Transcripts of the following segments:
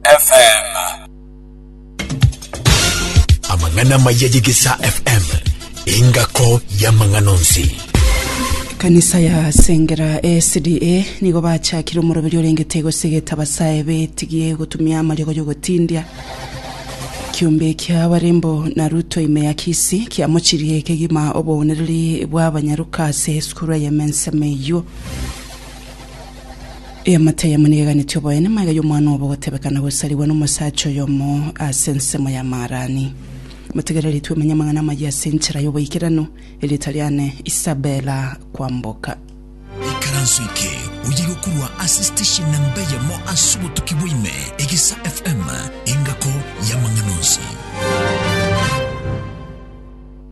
FM. Amang'ana amaya ye Gisa FM, engako y'amang'ana onsi. Ekanisa ya Sengera SDA nigo bachakire omoroberi orengete gosegeta abasae betigie gotumia amariogo y'ogotindia. Kiombe kia Warembo na Ruto ime ya Kisii kiamochirie kegima oboonereri bw'abanyaruka ase esukuru eye Mensem eywo. Eamate eyemo nigo eganeti oboene, magega y'omwana obo gotebekana gosarigwa nomosacha oyomo ase ensemo ya Maharani. Motegereri twemenye amang'ana amayia ase enchera y'oboikeranu, erieta riane Isabella Kwamboka. Ikaranso eke oyerwe korwa ase station namba eyemo ase obotuki bwa ime, Egisa FM, engako y'amang'ana onsi.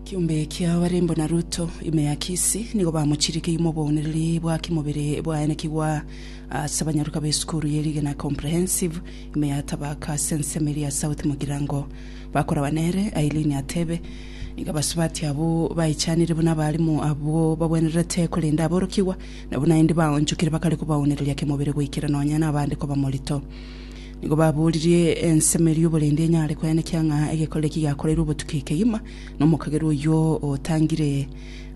Kiombe kia Olimbo na Ruto, ime ya Kisi, nigo bamochirikeirie moboonereri bwa kimobere bwaenekigwa ase abanyaruka b'esukuru ye Rigena Comprehensive, ime ya Tabaka ase ensemo eria ya South Mugirango. Bakoraba nere, Aileen atebe, Nigo abasubati abwo baichanire buna abalimu abwo bagwenererete korenda aborokigwa, nabo naende baonchokire bakare koboonereria kimobere goikera nonya nabande koba morito. Nigo baboririe ensemo eria oborende enyare koyanekia ng'a egekorero eki giakoreirwe obotuki kegima nomokagerwa oyio otangire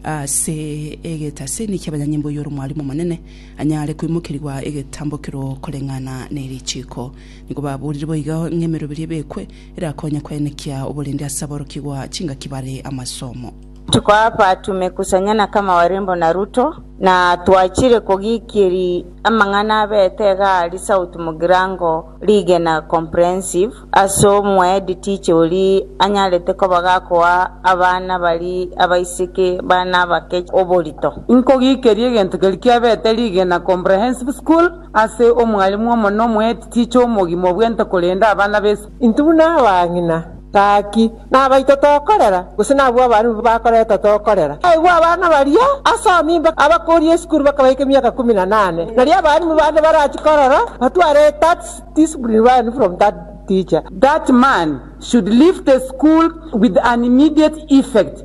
ase egetase, niki abanyanyimbo oyio ore omwarimu omonene anyare koimokerigwa egetambokero koreng'ana ne richiiko. Nigo baborire boigo ng'a emeroberi ebekwe erakonye koyanekia oborende ase aborokigwa chingaki bare amasomo. Tukoa abatume kusanya na kama Warembo na Ruto, na twachire kogikiri amang'ana abete iga ari South Mugirango rigena comprehensive ase omoeditiche ori anyarete koba gakoa abana bari abaiseke bana abake oborito. Nkogikeri egento keri kiabete rigena comprehensive school ase omwalimu omonene omoeditiche omogima obwente korende abana b'esiko. Intwe buna abang'ina, gaki, nabaito tokorera, gose nabwo abana nigo bakoreta tokorera. Aigwa abana baria ase amimba abakoria esukuru bakabaika emiaka ikomi na nane. Nario abalimu bande barachi korora batware that discipline learned from that teacher. That man should leave the school with an immediate effect.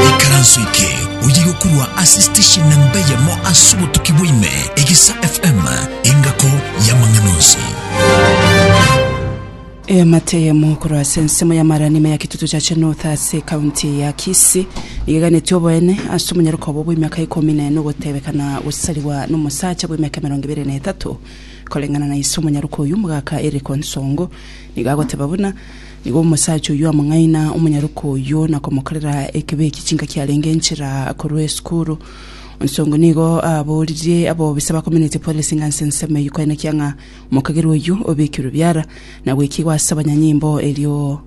Ikaranso eke oye gokorwa ase station namba eyemo ase obotuki bwaime, Egisa FM, engako y'amang'ana onsi. Eamate eyemo korwa ase ensemo ya Maranima ya Kitutu Church North ase ekaunti ya Kisii nigo eganeti oboene ase omonyaroka obo bw'emiaka ikomi na ene ogotebekana gosarigwa n'omosacha bw'emiaka emerongo ebere na etato. Koreng'ana na ise omonyaroka oyio, omogaka Eric Onsongo nigo agoteba buna Nigo omosacha oyio among'aina omonyaroka oyio na komokorera ekibe eki chinka kiarenge enchera korwa esukuru. Onsongo nigo aaboririe abobisa bakominete Policing ase ensemo eyio koenekia ng'a omokagerwa oyio obekirwe biara na gwekigwa ase abanyanyimbo erio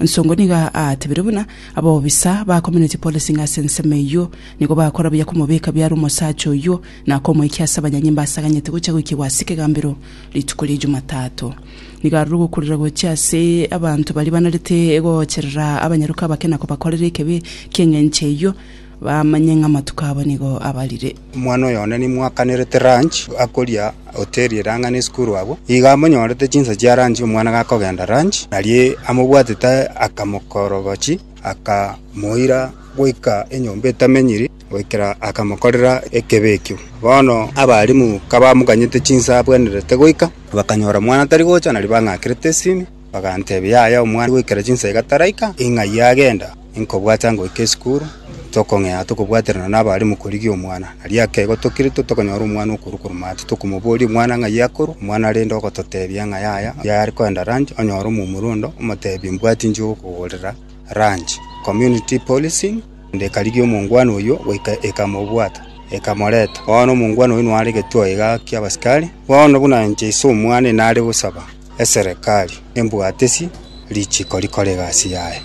Nsongo nigo aatebire buna abobisa bakominete Policing ase ensemo eyio nigo bakora buya komobeka biara omosacha oyio na komoikia ase abanyanyimbo ase aganyete gocha goikigwa ase ekegambero rituko rie Jumatato. Nigo aroro ogokurera gochia ase abanto baria banarete goocherera abanyaroka abake na kobakorera ekebi, eki'engencho eyio bamanye ng'a amatuko abo nigo abarire. Omwana oyonde nimwakanerete lunch, akoria hoteri ere ang'e n'esukuru abwo. Iga amonyorete chinsa chia lunch omwana gakogenda lunch, aria amobwatete akamokorogochia, akamoira goika enyomba etamenyiri. goikera akamokorera ekebe ekio. Bono abarimu kabamoganyete chinsa abwenerete goika, bakanyora omwana tari gocha, nario bang'akerete esimi, bagantebia, Yaya, omwana goikera chinsa iga taraika, ing'ai agenda? Inkobwata ngoika esukuru, tokong'ea tokobwaterana nabarimu korigia omwana. Nario ekeego tokiritwe, tokanyora omwana okorwa korwa maate, tokomoboria, Omwana ng'ai akorwa? Omwana rende ogototebia ng'a yaya, yare kogenda ranch, onyore omomura onde, omotebie, Mbwati inche ogokogorera ranch. Community policing. Naende ekarigia omongwana oyio goika ekamobwata, ekamoreta. Bono omongwana oyio noare getwaaiga ki'abasikari. Bono buna inche ise omwana inare gosaba eserekari, embwatisi richiko rikore egasi yaye.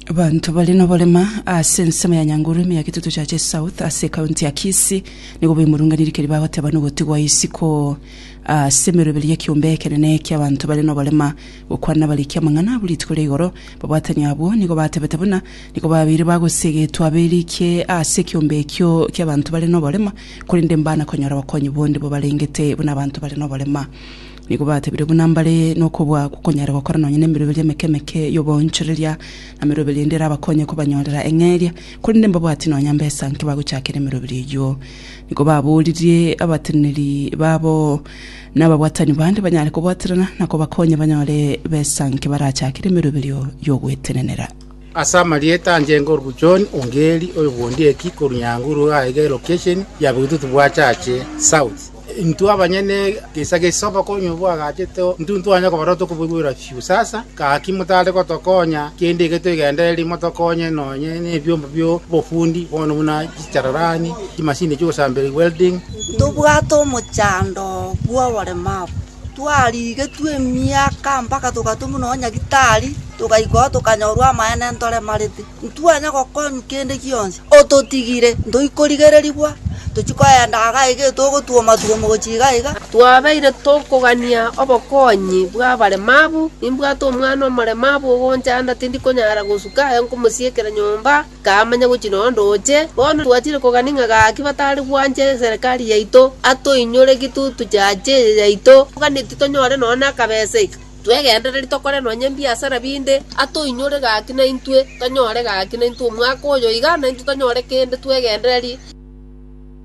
Abanto bare noborema ase ensemo ya Nyanguru ime ya Kitutu Churches South ase ekaunti ya Kisii nigo baimorunganire keri bagoteba nogotigwa isiko ase emeroberio y'ekiombe ekenene ki'abanto bare noborema. Gokwana abariki amang'ana abwo rituko ria igoro, babwatani abwo nigo batebete buna nigo babeire bagosiegetwa aberikie ase ekiombe ekio ki'abanto bare noborema, korende mbana konyora obokonyi bonde bobarengete buna abanto bare noborema. Nigo batebire buna mbare nokobua gokonyare gokora nonya nemeroberio emeke emeke y'oboonchoreria, na meroberio ende erabakonye kobanyorera eng'eria, korende mbabwati nonya mbesa nki bagochakera emeroberio eyio. Nigo baboririe abateneneri babo. Nababwatani bande banyare kobwaterana na kobakonya banyore besanke barachakere emeroberio y'ogwetenenera. Ase amarieta anche enkoruku John Ongeri oyo bw'ondi eki korwa Nyanguru iga aiga elocation ya Bitutu bwa Chache South. Intwe abanyene egeisa gia isiko obokonyi obo bwagachete intwe ntitwanyara kobarora tokoboigwera fiu. Sasa gaki motare gotokonya kende iga twegendereri motokonye nonye nebiomba biobofundi bono buna echararani, chimasini chi'ogosambera welding, Ntobwate omochando bw'oboremu abwo. Twarigetwe emiaka mpaka togatumwa nonya nyagitari, togaikwa ao tokanyorwa amaene ntoremarete. Ntitwanya gokonywa kende gionsi. Ototigire, ntoichi korigererigwa, tochia kogenda iga iga etogotwoma-twoma gochia iga iga. Twabeire tokogania obokonyi bw'abaremabu. Nimbwate omwana omoremabu ogonchanda tindi konyara gosuka aye nkomosiekera nyomba. Kamanya gochia noyo ndoche, bono twachire kogania ng'a gaki batari gwancha eserekari yaito, atoinyore gitutu chiacha eye yaito, toganetie tonyore nonya nakabesa eke, twegendereri tokore nonya ebiasara binde, atoinyore gaki naintwe tonyore gaki naintwe omwaka oyo iga, naintwe tonyore kende twegendererie.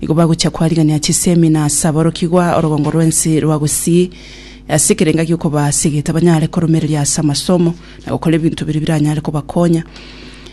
Nigo bagochia koarigania chisemi na ase aborokigwa orogongo rw'ense rwa gosii, ase ekerenga gi'okobaa ase egete banyare koromereria ase amasomo, na gokora ebinto biria biranyare kobakonya.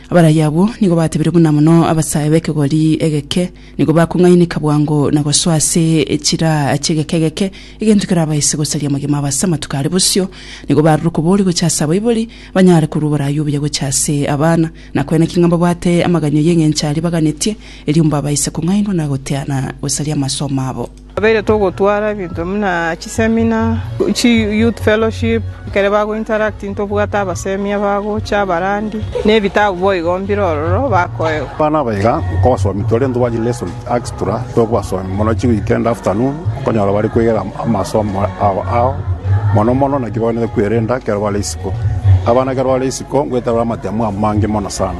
Abarai abwo nigo batebire buna mono abasae b'ekegori egeke, nigo bakong'ainika bwango na gosoa ase echiraa chi'egeka egeke, egento kerabaise gosaria amagima abo ase amatuko are bosio. Nigo barure okobooria gochia ase abaibori, banyare korua oboraai obuya gochia ase abana. Na kwene ki ng'a mbabwate amaganya y'engencho aria baganetie, erio mbabaise kong'ainwa na goteana gosaria amasomo abo. Twabeire togotwara ebinto buna chisemina, chiyouth fellowship, ekero bagointeract ntobwate abasemi abagocha, abarandi, na ebitabu boigo mbire ororo bakoegwa. Abana aba iga nkobasomi tore intwe bwanchire lesson extra tokobasomi mono chiweekend afternoon okonyora bare kwegera amasomo abo ao mono mono naki baganete kwerenda ekero bare isiko. Abana ekero bare isiko. Ko ngweterwa amatemo amange mono sana,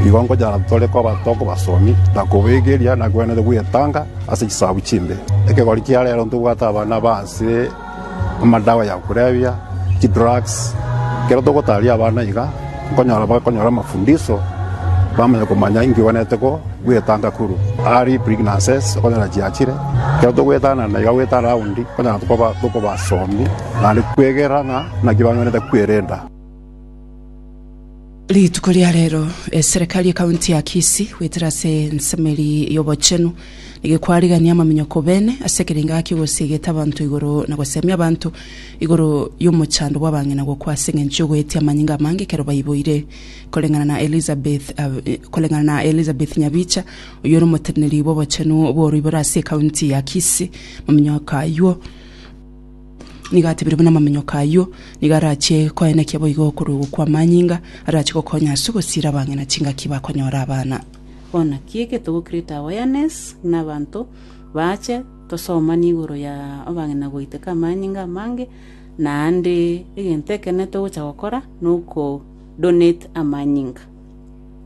nigo nkochara tore koba tokobasomi, na koboigeria, na kwenene gwetanga ase chisaku chimbe. Ekegori kia rero ntobwate abana ba ase amadawa ya kulevya, chidrugs. Ekero togotaria abana iga, nkonyora bakonyora amafundisho, bamanya komanya inki gwenerete ko gwetanga korwa early pregnancies okonyora chiachire. Ekero togwetana na iga gwetana raundi, nkonyora tokoba tokobasomi, naende kwegerera ng'a naki banywenerete kwerenda. Rituko ria rero eserekari ya kaunti ya Kisii goetera ase ensemeri y'obochenu nigo ekwarigania amaminyoko bene ase ekerengo ake gosiegete abanto igoro na gosemia abanto igoro y'omochando bw'abang'ina gokwa ase eng'encho y'ogoetia amanyinga amange ekero baiboire koreng'ana na Elizabeth Ab- koreng'ana na Elizabeth Nyabicha oyio ore omoteneneri bw'obochenu bw'oroiboro ase ekaunti ya Kisii maminyoko aywo Nigo atebire buna amaminyoka ayio nigo arachie koenekia boigo okorwa ogo kw'amanyinga arachie gokonya ase ogosiira abang'ina chingaki bakonyora abana. Bono ki egento go create awareness buna abanto baache tosomani igoro ya abang'ina goiteka amanyinga amange naende egento ekenene togocha gokora noko donate amanyinga.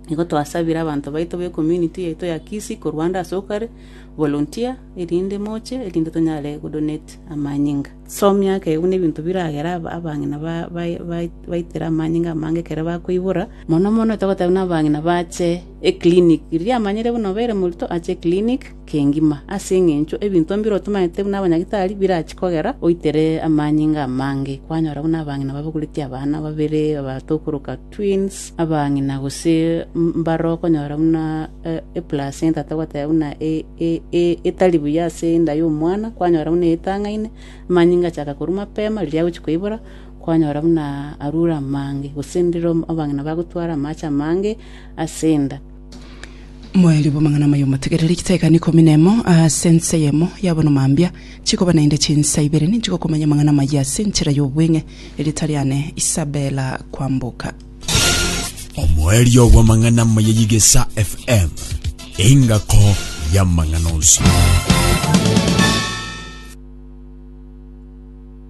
Nigo twasabire abanto baito be community yaito ya Kisii korwa ande asokare volunteer erinde moche, erinde tonyare godonate amanyinga. Somia akeegwa nebinto biragera aba abang'ina ba ba baitere amanyinga amange ekero bakoibora, mono mono etogoteba buna abang'ina bache eclinic. Riria amanyire buna obeire morito ache eclinic kengima, ase eng'encho ebinto mbire otomanyete buna abanyagitari birachi kogera oitere amanyinga amange. Kwanyora buna abang'ina babogoreti abana babere, abato okoroka. Twins abang'ina gose mbare okonyora buna eplacenta togoteba buna etari buya ase enda y'omwana, kwanyora buna etang'aine, amanyinga achaka korwa mapema riria agochia koibora, kwanyora buna arure amange, gose ndire abang'ina bagotwara amache amange ase enda. Moeri bw'amang'ana amaya omotegereri, chitaiga nikomi nemo ase ense eyemo yabona mambia, chikoba naende chinsa ibere ninche gokomanya amang'ana amaya ase enchera y'obweng'e, erieta riane Isabella Kwamboka. Omoerio bw'amang'ana amaya y'Igesa FM, engako y'amang'ana onsi.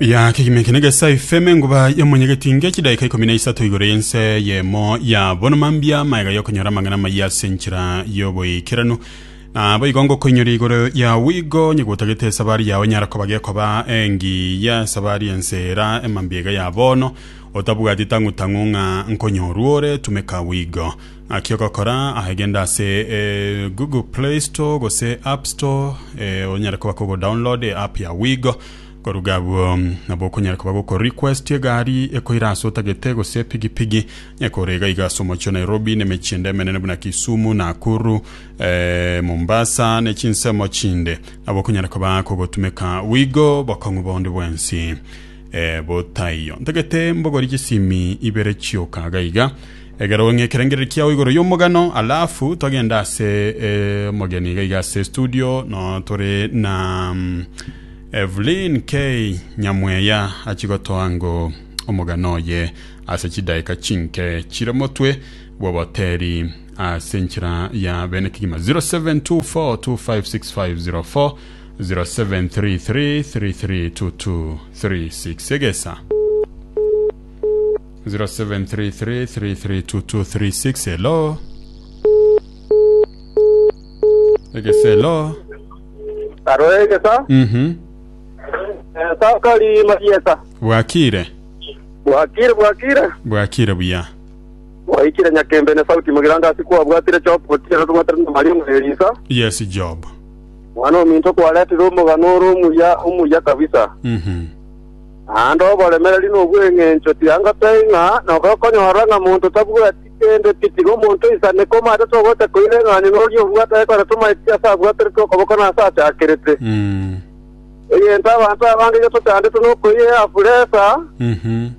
Ya kegima eke negesa efeme nguba y'omonyegeti nge chidaika ikomi na isato igoro y'ense yemo ya bono mambia amaega y'okonyora amang'ana amayia ase enchera y'oboikeranu nabo igo ngokoinyora igoro ya wigo onye gotagete esabari yao enyara koba gekoba engiya esabari ensera emambia iga ya bono otabwati tang'u tang'u ng'a nkonyorwa ore tumeka wigo aki ogokora aye genda ase eh, google play store gose app store eh, onyare koba kogo download app ya wigo Koruga abwo, nabo okonyara koba goko request egari ekoira ase otagete gose epigipigi ekore iga iga ase omochie o Nairobi na emechie ende emenene buna Kisumu, Nakuru, eh, Mombasa ne chinsemo chinde. Nabo okonyara koba kogotumeka bwigo bokong'u bonde bwensi eh, botaiyo. Ntagete mbogori chisimi ibere chioka iga iga egere ong'e ekerengereri kiao igoro y'omogano alafu togende ase eh, omogeni iga iga ase studio no tore na mm, Evelyn K. Nyamweya achia gotoa ng'o omogano oye ase chidaeka chinke chire motwe bw'oboteeri ase enchera ya bene kegima. 0724256504 0733332236 egesa 0733332236 hello egesa hello Karo egesa, Mhm. egesa okari marieta. Bwakire. Bwakire, bwakire. Bwakire buya. Mwaikire nyakembe ne sauti mogiranda ase kwabwatire Job gotiera tobwatire na Maria omwe Elisa. Yes, Job. Mwana ominto kwaretire omogano ore omuya, omuya kabisa. Mhm. Naende oboremereri nobweng'encho tianga toing'a, nabo okonyora ng'a monto tabwati Korende titiri omonto oisane koma ase togocha koira eng'anyo noria obwate aye kore tomaeti ase abwaterete okoboko na ase achakerete. Mm. Egento abanto abange iga tochandete nokoira eabu resa, Mhm.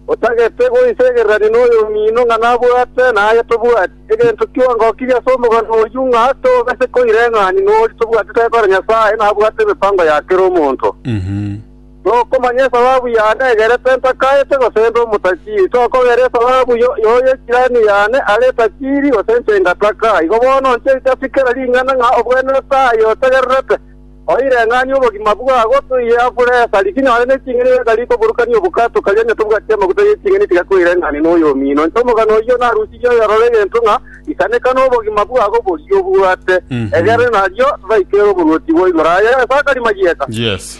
otagete goisegererania noyomino ng'a nabwate na aye tobwati. Egento kionga okirie ase omogano oyio ng'a togase koira eng'anyo noria tobwatete aye kore Nyasaye nabwate emepango ya kera omonto. Mhm. Nokomanya esababu yane egerete ntakaete gosenda omotakiri, tokogera esababu y'oyo jirani yane are etakiri, gose inche ngataka. Igo bono inche ngasikera ring'ana ng'a obwenerete aye otegererete, oireng'anie obogima bwabo, toiye abure esari, tinya ore neching'eni gaka rikoburukania obokato karia onye tobwati amaguta yeching'eni tiga koireng'ania noyomino. Inche omogano oyio narusirie oyorore egento ng'a isaneka nobogima bwabo boria obwate, egere nario baikere oboruoti bwa igoro. Aye Sakari Mayieta. Yes.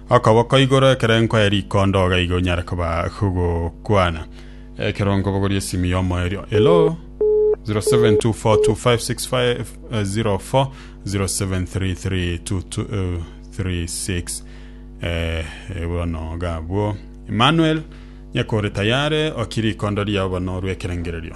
Okoboko igoro ekerengo aye rikondo iga iga onyare koba kogokwana ekero nkobogoria esimu yomo erio. Hello 0724256504 07332236 eh, eh, bono gabwo Emmanuel nyakore tayare okiri ikondo riao bono orwe ekerengererio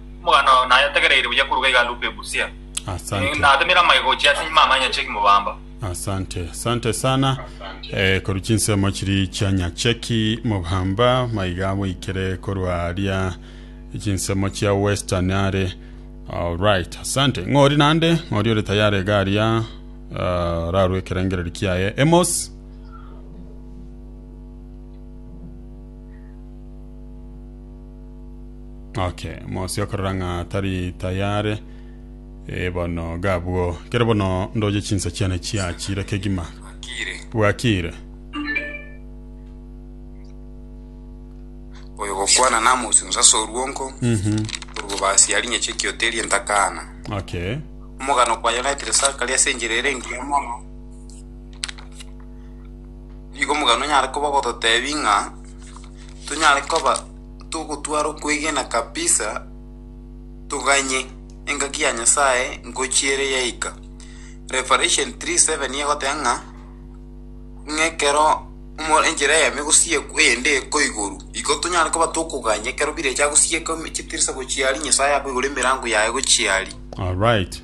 Omoganda oo naye ategereire buya koruga iga Luke Ebusia. Eh, Asante. Natemire amaye gochia ase nyuma amanya cheki mobamba. Asante, asante sana eh, koru chinsemo chiri chia Nyacheki Mobamba maiga bweikire korwa aria chinsemo chia Western are alright asante ng'ori nande ng'ori ore tayari iga aria uh, rarwe ekerengereri kiaye Emos okay mosi okorora ng'a tari tayare e bono gabwo kero bono ndoche chinsa chiane chiachire kegima Akire. bwakire Oyo gokwana na mosunsa soruonko. Mhm. Orugo basi yari nyeche kioteri entakana. okay Omogano kwa United Sakari ase enchera ere engiya mono. Nigo omogani onyare koba ogototeebia ng'a tonyare koba togotwara okwegena kabisa, toganye engaki ya Nyasae ngochia ere yaika. Revelation 3:7 nigo egoteba ng'a, ng'a ekero omo- enchera eyemo egosiekwa eyende eko igoro, igo tonyare koba tokoganya ekero bire echiagosieka chitirisa gochia aria, Nyasae akoigora emerango yaye gochia aria. Alright.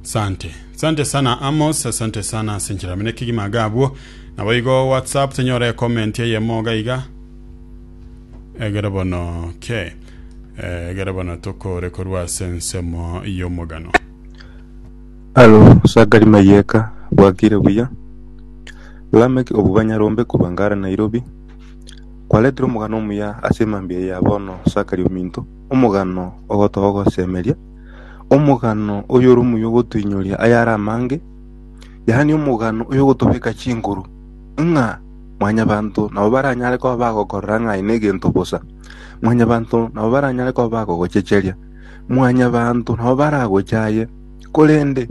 Sante. Sante sana Amos, asante sana ase enchera mene kegima iga abwo. Naboigo WhatsApp tonyora comment eyemo iga iga. Egere bono ke. Eh, Egere bono tokore korwa ase ensemo y'omogano. Alo Sakari Mayeka bwakire buya Lameck obuba Nyarombe koba Ngara Nairobi kwaretire omogano omuya ase mambia ya bono Sakari ominto omogano ogotogosemeria omogano oyore omuya ogotoinyoria ayare amange, yaani omogano oyogotobeka chinguru, ng'a mwanyabanto nabo baranyare koba bagokorera ng'a aye negento bosa, mwanyabanto nabo baranyare koba bagogochecheria, mwanyabanto nabo baragocha aye, korende